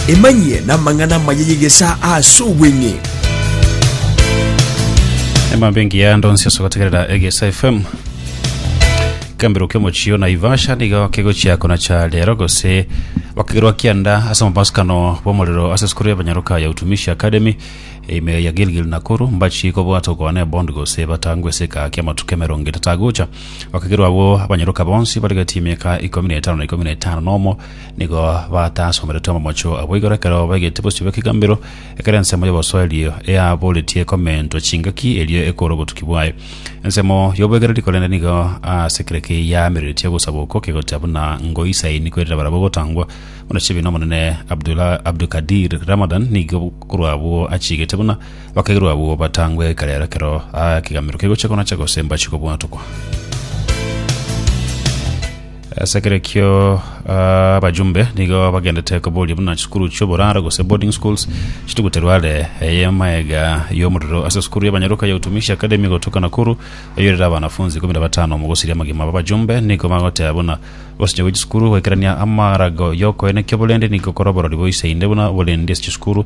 Emanyie namang'ana amaya y'egesaa ase obweng'e. Emambe engiya ndonsi ase gotegerera egesa fm kambiro kemochio na ivasha nigo kegochia konacha rero gose bakegerwa kianda ase amabasikano bw'omorero ase esukuru y'abanyaroka ya utumishi academy ime ya gilgil nakuru mbachi kobwata okwana ebond gose batangwe eseka kiamatuko emerongo etatagocha Bakagerwa abwo abanyoroka bonsi barigetie emiaka ikomi na etano na ikomi na etano nomo, nigo batasomeretwe amamocho abo igoro ekero baigete bosio bw'ekegambero, ekero ensemo y'obosoeri eaboretie komentwa chingaki erio ekoora obotuki bwaye. Ensemo y'obwegereri korende nigo ase kera ki yaamereretie ogosaba okwo kegocha buna ngoisaini koirera barabwo gotangwa buna chibi n'Omonene Abdulkadir Ramadan nigo korwa abwo achigete buna Bakairwa abwo batangwe ekero ero ekero ekegamero kegochia konacha gose mbachie kobwatokwa. Ase ekero ekio ah, abajumbe nigo bagendete koboria buna chisukuru chi'oboraro gose boarding schools chituguterwa are eye maega y'omorero ase esukuru y'abanyaroka ya Utumishi Academy gotoka Nakuru eyorire abanafunzi ikomi na batano mogosiria amagima aba abajumbe nigo bagoteba buna gosinya gwe chisukuru goikerania amarago y'okoeneki oborende nigo gokora oborori boise inde buna oborindi ase chisukuru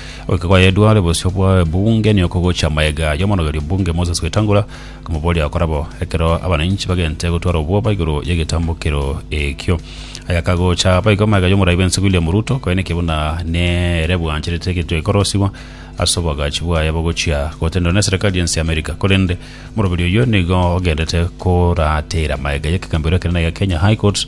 Goika kwayedware bosio bwa ebunge nigo gochia amayega y'omorogerio bunge Moses Wetangula komoboria akore bo ekero abananchi bagente gotwara obwoba igoro y'egetambokero ekio. Aya kagocha abaigo amayega y'omorai bwense William Ruto koeneke buna nere bwancherete egetwe ekorosigwa ase oboagachi bwaye bogochia gotenderwa neserikali y'ense ya America. Korende omoroberio oyio nigo ogendete koratera amayega y'ekegambero ekenene gia Kenya High Court